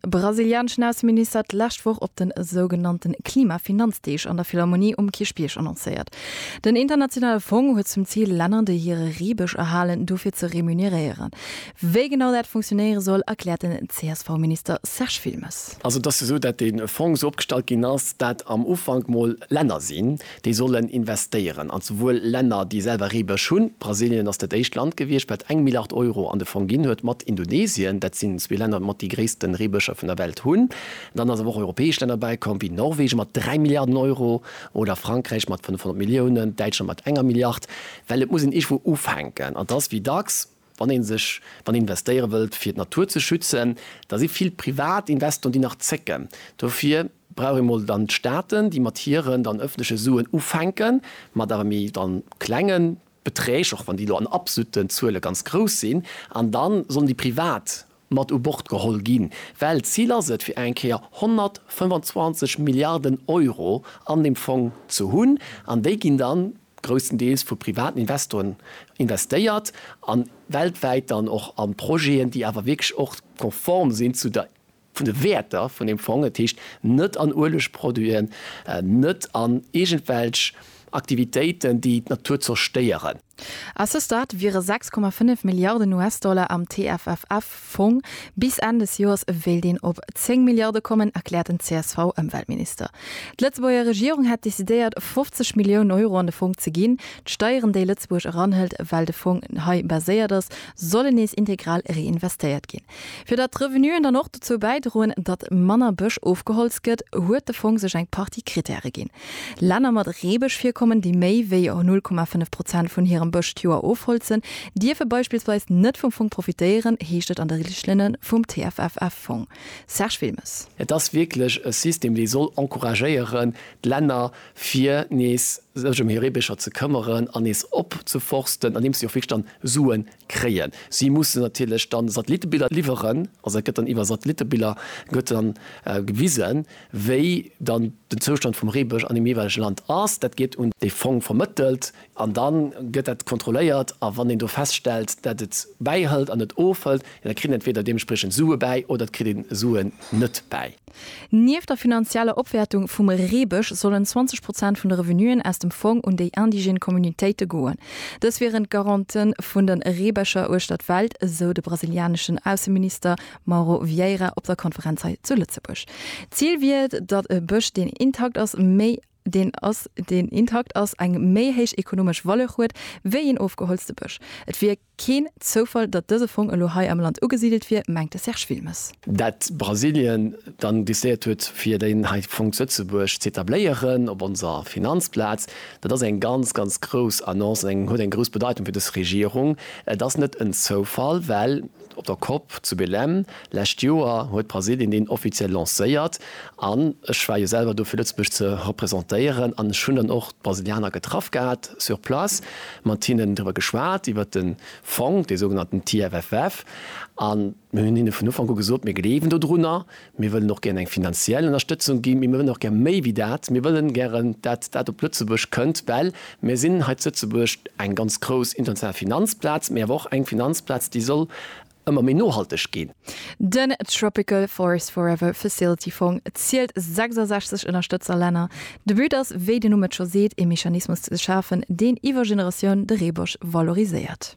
De brasilianeschen Ausseminister hat d'lescht Woch op de sougenannte Klimafinanzdeeg an der Philharmonie um Kierchbierg annoncéiert. Den internationale Fong huet zum Zil, Länner, déi hire Reebësch erhalen, dofir ze remuneréieren. Wéi genau dat funktionéiere soll, erkläert den CSV-Minister Serge Wilmes. Also et ass jo esou, datt dee Fong esou opgestallt ginn ass, datt am Ufank mol Länner sinn, déi sollen investéieren an souwuel Länner, déi selwer Reebësch hunn, Brasilien ass dat éischt Land gewiescht, wat eng Milliard Euro an de Fong ginn huet, mat Indonesien, dat sinn zwee Länner mat déi gréissten Reebëscher vun der Welt hunn. Dann ass awer och europäesch Länner bäikomm, wéi Norwegen mat dräi Milliarden Euro oder Frankräich mat 500 Milliounen, Däitschland mat enger Milliard, well et muss een iergendwou ufänken an et ass wéi dacks, Wann een sech, wann een investéiere wëllt fir d'Natur ze schützen, da si vill privat Investoren déi nach zécken. Dofir brauch ee mol dann d'Staaten, déi mat hiren dann ëffentleche Suen ufänken, mat awer méi dann klenge Beträg, och wann déi elo an absoluten Zuele ganz grouss sinn, an dann sollen déi privat mat u Bord geholl ginn, well d'Zil ass et, fir eng Kéier 125 Milliarden Euro an deem Fong ze hunn, an déi ginn dann grousstendeels vu privaten Investoren investéiert an weltwäit dann och an Projeten, déi awer wierklech och konform sinn zu der vun de Wäerter vun deem Fong, dat heescht net an Uelegproduiten, net an iergendwelch Aktivitéiten, déi d'Natur zerstéieren. A ce stade wiere 6,5 Milliarden US-Dollar am TFFF-Fong. Bis Enn des Joers wéilt een op 10 Milliarde kommen, erkläert den CSV-Ëmweltminister. D'Lëtzebuerger Regierung hätt decidéiert, 50 Milliounen Euro an de Fong ze ginn. D'Steieren, déi Lëtzebuerg eranhëlt, well de Fong hei baséiert ass, sollen nees integral reinvestéiert ginn, fir datt d'Revenuen dann och dozou bäidroen, datt manner Bësch ofgeholzt gëtt, huet de Fong sech eng Partie Krittäre ginn. Länner mat Reebëschvirkommen, déi méi wéi 0,5 Prozent vun hirem Bësch d'Joer ofholzen, dierfe beispillsweis net vum Fong profitéieren, heescht et an de Richtlinne vum TFFF-Fong. Serge Wilmes. Et ass wierklech e System, dee soll encouragéieren, d'Länner fir nees sech ëm hir Reebëscher ze këmmeren an nees opzeforsten, andeems si och wierklech dann Suen kréien. Si mussen natierlech dann Satellittebiller liwweren, also et gëtt dann iwwer Satellittebiller gëtt dann gewisen, wéi dann den Zoustand vum Reebësch an deem jeeweilege Land ass. Dat gétt un dee Fong vermëttelt an da gëtt dat kontrolléiert. A wann een do feststellt, dat et bäihëlt an et ofhëlt, da kritt een entweder deementspriechend Sue bäi oder et kritt ee Suen net bäi. Nieft der finanzieller Opwäertung vum Reebësch sollen 20 Prozent vun de Revenuen aus dem Fong un déi indigène Communautéite goen. Dës wieren d'Garante vun de Reebëscher uechter d'Welt, esou de brasilianeschen Ausseminister Mauro Vieira op der Konferenz hei zu Lëtzebuerg. D'Zil wier et, datt e Bësch, deen intakt ass, méi deen ass, deen intakt ass, eng méi héich ekonomesch Valeur huet, wéi een ofgeholzte Bësch. Et wier. Keen Zoufall, datt dëse Fong elo hei am Land ugesidelt wier, mengt de Serge Wilmes. Dat Brasilien dann décidéiert huet fir deen hei Fong zu Lëtzebuerg z'etabléieren, op onser Finanzplaz, dat ass eng ganz, ganz grouss Annonce an eng huet eng grouss Bedeitung fir dës Regierung. Et ass net en Zoufall, well op der Cop zu Belém lescht Joer huet Brasilien deen offiziell lancéiert An ech war jo selwer do fir Lëtzebuerg ze représentéieren an ech hunn dann och d'Brasilianer getraff gehat sur place, mat hinnen driwwer geschwat iwwert den Fong, dee sougenannten TFFF, an mir hunn hinne vun Ufank u gesot, mir gleewen dodrunner, mir wëllen och gären eng finanziell Ënnerstëtzung ginn, mee mir wëllen och gär méi wéi dat, mir wëllen gären dat dat op Lëtzebuerg kënnt, well mir sinn hei zu Lëtzebuerg eng ganz grouss international Finanzplaz, mee awer och eng Finanzplaz déi soll ëmmer méi nohalteg ginn. Den Tropical Forest Forever Facility Fong zielt 66 Ënnerstëtzerlänner. De But ass, wéi den Numm et scho seet, ee Mechanismus ze schafen, deen iwwer Generatioun de Reebosch valoriséiert.